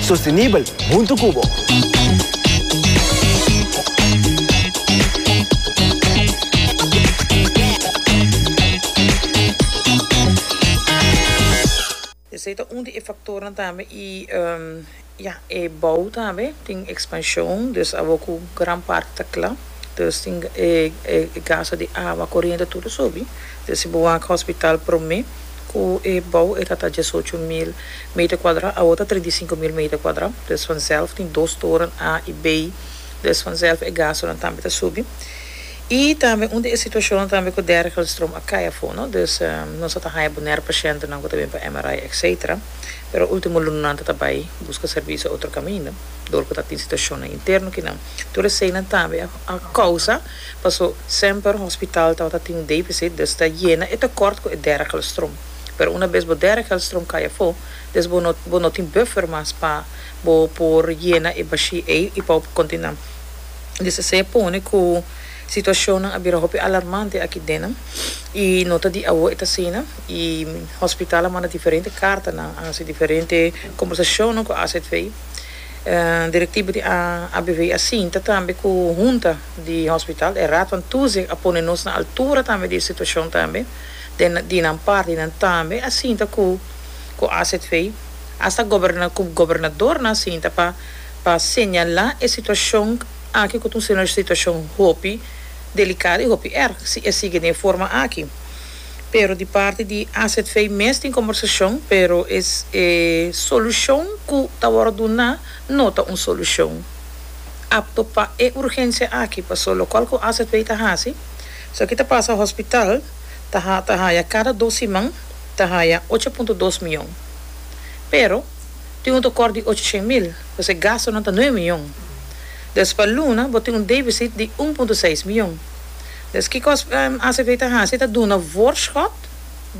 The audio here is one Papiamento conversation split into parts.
Sostenibel huntu cu bo. Esey ta un di e factornan tambe y ya, e bou tambe tin expansion, dus abo cu gran parti ta cla. There's tin e gasa di awa, koriente tur subi. There's si bo wak hospital prome ku e bou e ta ta diesocho mil meter kuadra awor ta trinta i sinku mil meter kuadra. There's vanzelf tin dos toren a i b. There's vanzelf e gasonan tambe ta subi. I tambe un di e situashonnan tambe ku Dergelstrom a kai afo no. There's nos a ta haya bonaire pashentenan ku ta bin pa MRI etc. Pero ultimo lunanan ta ta bai buska servisio otro kaminda dor ku ta tin situashonnan interno kinan. Tur eseinan tambe a kousa paso semper hospital tabata tin defisit des ta yena e tekort ku e dera kelstron. Pero una bes bo dera kelstron kai afó, des bo no bo no tin buffer mas pa bo por yena e bashi ei i pa bo por kontinua. Des esei a pone ku situashonnan a bira hopi alarmante aki dennan i no ta di awo e ta asina i hospital a manda diferente kartanan, a hasi diferente kombersashonnan ku AZV. Directivo di ABV a sinta tambe cu hunta di hospital, e raadvan Tuze a pone nos na altura tambe di e situacion tambe, den di nan parti y nan tambe a sinta cu cu AZV, hasta goberna cu gobernador nan a sinta pa pa señala e situacion aki cu ta un situacion hopi delicado y hopi erg si e sigue den forma aki. pero di parti di azv mes tin kombersashon pero e solushon ku ta wòrdu duná no ta un solushon apto pa e urgensia aki paso lokal ku azv ta hasi so ki ta pasa hospital ta ha ta haya kada dos siman ta haya ocho punto dos mion pero tin un tokòrt di ocho shen mil pues e gastonan ta nueve mion des pa luna bo tin un debisit di un punto seis mion. Des kikos acp ta hasi ta duna voorschot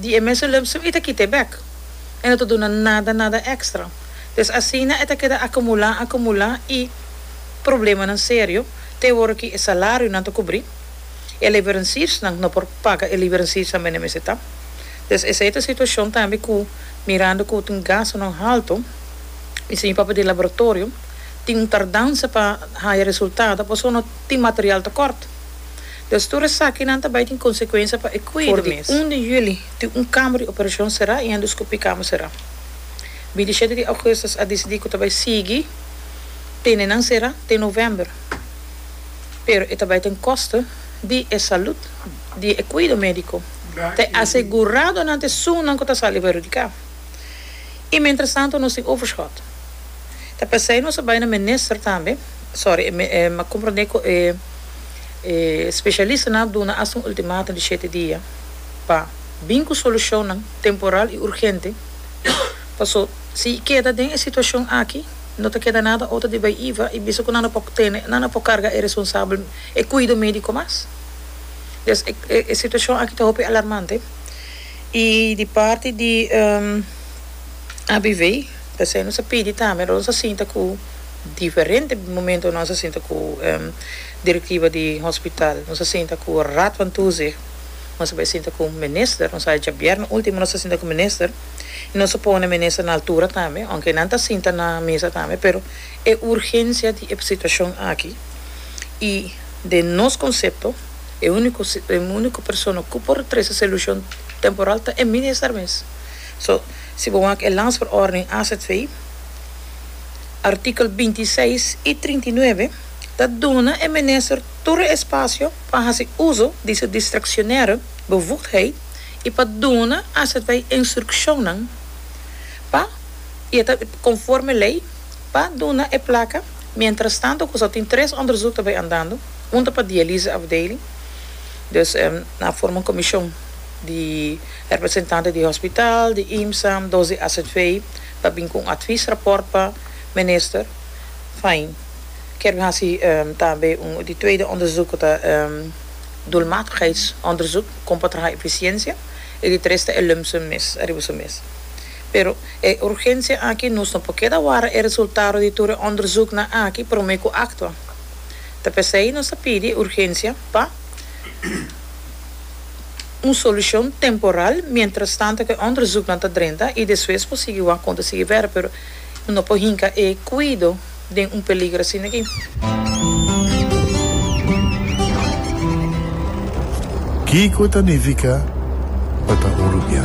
di e mesulipsum y ta kita e bek. E no ta duna nada nada extra. Des asina e ta keda acumula acumula y problemanan serio te e wor ki e salarionan ta cubri, e leveranciersnan no por paga e leveranciers nan bende mester ta. Des esey ta situacion tambe cu mirando cu tin gastonan halto y señor papel di laboratorio tin un tardansa pa haya resultado pasobra no tin material tocort. Des tur esakinan ta bai tin konsekuensia pa e kui der mes. For di un di juli tin un kamber di operashon será i endoskopi kamber será. Bidishete di ougustus a disidí ku ta bai sigui tene nan será te novèmber, pero e ta bai den koste di e salud di e kuido médiko ta e asegurado nan te su nan ku ta sali perhudiká. I mientras tanto nos tin overshot. Ta p'esei nos a bai na minister tambe. sorry, e a komprondé ku e spesialistanan a duna asta un ultimátum di shete dia pa bin ku solushonnan temporal i urgente, paso si i keda den e situashon aki no ta keda nada otro di bai iba i bisa ku nan a por tene, nan a por karga e responsabel, e kuido médiko mas. Entonces, e situashon aki ta hopi alarmante i di parti di ABV, p'esei nos a pidi tambe, nos a sinta ku. Diferente momento nos a sinta cu directiva di hospital. Nos a sinta cu Raad van Toezicht, nos a bai sinta cu minister, nos a echa bierna ultimo nos a sinta cu minister y nos a pone minister na altura tambe, aunke nan ta sinta na mesa tambe, pero e urgencia di e situacion aki y den nos concepto e unico e unico persona cu por trece solucion temporal ta e minister mes. So si bo wak e landsverordening azv. Artikel binti seis i trinta i nuebe ta duna e minister tur e espasio pa hasi uso di su distraccionaire bevoegdheid i pa duna aservij instruccionnan pa, i e ta conforme ley, pa duna e placa mientrastanto cu so tin tres onderzoek ta bay andando, un ta pa dialyse afdeling, dus na forma un comision di representante di hospital, di IMSA, dos di aservij. ta bin cu un adviesrapport pa Minister. Fijn. Kier mi haci tambe di tweede onderzoek cu ta doelmatigheidsonderzoek, con pa traha eficiencia, y di tres ta e lump sum mes ariba su mes. Pero e urgencia aki nos no por keda wara e resultado di tur e onderzoeknan aki prome cu actua. Ta p'esey nos ta pidi urgencia pa. un solucion temporal mientras tanto cu e onderzoeknan ta drenta y despues por sigui wak con ta sigui werk pero no por hinca e cuido den un peligro asina aki. Kico ta nifica pa ta hurupiá?